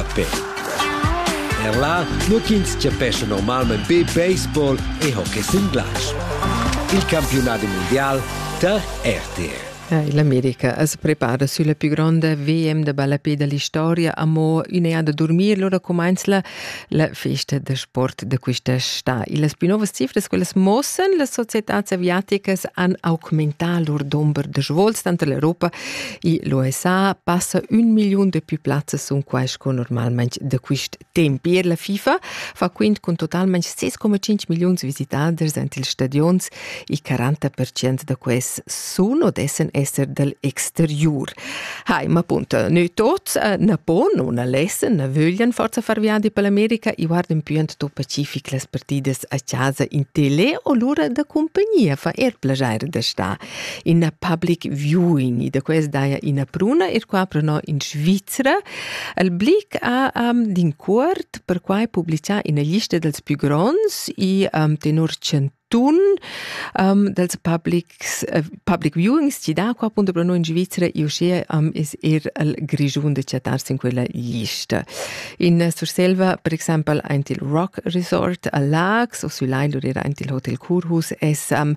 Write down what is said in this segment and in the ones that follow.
a pe. Er là, nu ch'ins chapescha normalmain be baseball e hockey sin glatsch. Il campiunat mundial tar RTR. L'America es prepara sülla più gronda VM da ballapé da l'historia amo ün'eà da durmir, lura cumainzla la festa da sport da quista stà. Las più novas cifras, quellas mossen, las societàs aviaticas han augmentà lur dumber da svols tanto l'Europa L'USA passa un miliun de più plazzas sun quais co normalmente da quist temp. Per la FIFA fa quint con totalmente 6,5 million visitaders ant ils stadions, il 40% da quels sun o dessen esser dal exteriur. Hai, ma appunto, noi tots eh, na pon o na lessen, na vöglian forza far viadi per l'America e guardan più ant pacific las partidas a casa in tele o lura da compagnia fa er plagiare da sta. ina public viewing da quest daja ina pruna e qua preno in Svizzera al blic a um, din cuort per quai publicà ina lista dels più gronds e um, tenor centun um, dels publics uh, public viewings ci da qua appunto per noi in Svizzera e uscea um, es er al Grigiun de chattarsi in quella lista. In Surselva per exempel ein il Rock Resort a Lax o sü Lailur era ein il Hotel Kurhus es um,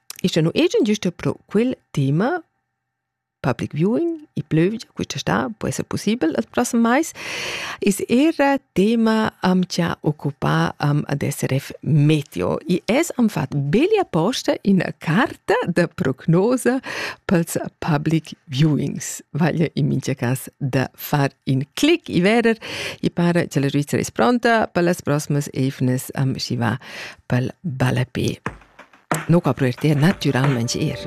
Ischa nu egian güsta però quel tema public viewing i plövgia quista sta po esser pussibel il prossem mais is era tema am cha occupà am ad SRF Meteo i es am fat beli aposta in carta da prognosa pels public viewings vaglia in mincha cas da far in clic i verer i para cha la Svizzera es pronta per las prosmas eivnas am schi va pel ballape. No copro eir te natüralmaing eir.